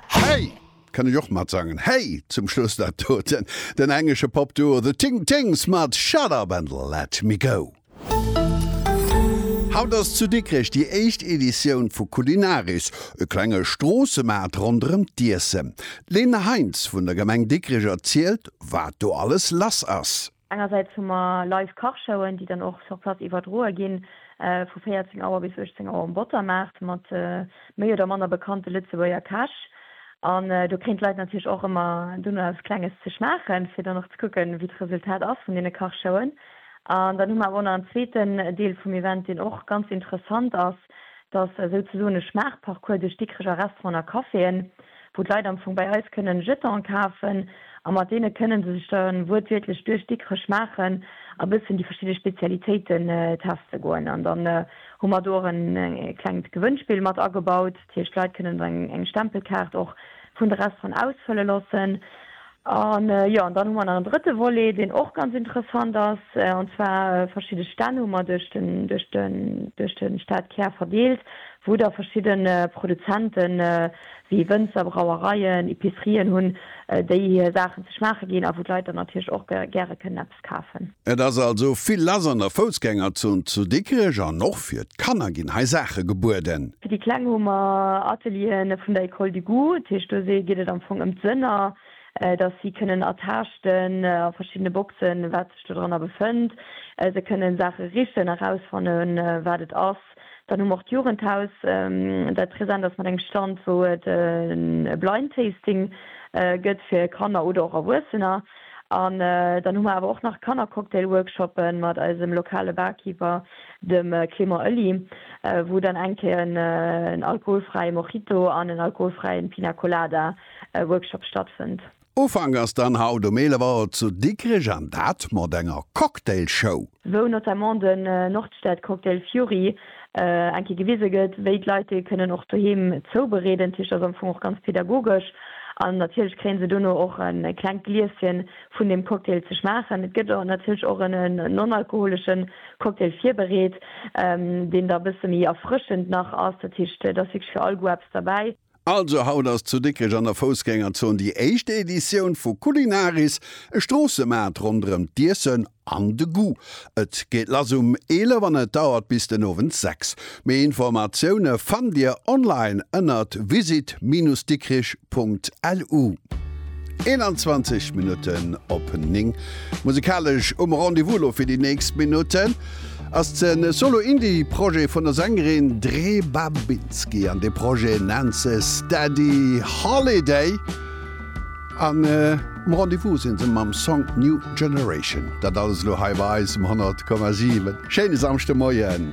Hey! Kann ech och matsangen. Hey! Zum Schluss dat doten. Den englesche Pop-Duo The Ting Tings mat Shut Up and Let Me Go. Haut ass zu Dikrech déi éischt Editioun vu Kulinaris, e klenge Stroossemaart ronderëm d'Iessen. D'Lene Heintz vun der Gemeng Dikrech erzielt, wat do alles lass ass. Engersäits hu mer live Kachshowen, déi dann och sur place iwwerdroe ginn, vu 14 Auer bis 18 Auer um Bottermaart, mat méi oder manner bekannte Lëtzebuerger Käch. An do kréien d'Leit natierlech och ëmmer dunn eppes Klenges ze schmaachen, fir dann och ze kucken, wéi d'Resultat ass vun deene Kachshowen. An dann hu mer awer och nach en zweeten Deel vum Event, deen och ganz interessant ass, Et ass esou ze soen e Schmaachparcours duerch Dikreger Restauranten a Caféen, wou d'Leit am Fong bei eis kënnen Jetanen kafen a mat deene kënnen se sech da wuertwiertlech duerch Dikrech schmaachen a bëssen déi verschidde Spezialitéiten teste goen. An dann hu mer do och e klengt Gewënnspill mat agebaut. Dat heescht, d'Leit kënnen eng Stempelkaart och vun de Restauranten ausfëlle loossen. An jo, an dann hu mer nach en drëtte Volet, deen och ganz interessant ass, an zwar verschidde Stänn hu mer duerch den, duerch de, duerch de Stadkär verdeelt, wou da verschidde Produzenten, wéi Wënzer, Brauereien, Epicerien hunn, déi hir Saachen ze schmaache ginn a wou d'Leit dann natierlech och gäre kënnen eppes kafen. Et ass also vill lass an der Foussgängerzon zu Dikrech an och fir d'Kanner ginn hei Saache gebueden. Fir déi Kleng hu mer Ateliere vun der Ecole du goût. Dat heescht, do geet et am Fong ëm d'Sënner, dass si kënnen ertaaschten a verschiddene Boxen, wat sech dodranner befënnt. Se kënnen Saache richen, erausfannen, wat et ass. Dann hu mer och d'Jugendhaus, dat present ass mat engem Stand, wou et e Blind Tasting gëtt fir Kanner oder och Erwuessener. An dann hu mer awer och nach Kannercocktail-Workshoppe mat eisem lokale Barkeeper, dem Clément Oelly, wou dann eng Kéier en alkoholfräie Mojito an en alkoholfräie Pina Colada Workshop stattfënnt. Ufank ass dann haut um 11 Auer zu Dikrech an dat mat enger Cocktailshow. Wou notamment den Nordstadcocktail Fury eng Kéier gewise gëtt, wéi d'Leit dee kënnen och doheem zoubereeden. D'Kich ass am Fong och ganz pedagogesch an natierlech kréien se dono och e klengt Glieschen vun dem Cocktail ze schmaachen. Et gëtt natierlech och en non-alkoholesche Cocktail virbereet, deen da e bësse méi erfrëschend nach ass. Dat heescht, et ass wierklech fir all Goût eppes derbäi. Also haut ass zu Dikrech an der Foussgängerzon déi éischt Editioun vu Culinaris, e Stroossemaart ronderëm d'Iessen an de Goût. Et geet lass um 11 an et dauert bis den Owend 6. Méi Informatioune fannt Dir online ënnert visit-dikrich.lu. 21 Minutten op 9. Musekalesch um Rendez-vous elo fir déi nächst Minutten. ass en Solo-Indie-Projet vun der Sängerin Dre Babinski an dee Projet nennt se Steady Holiday an um Rendez-vous sinn se mam Song New Generation. Dat alles elo hei bei eis um 100,7. Schéine Samschdemoien.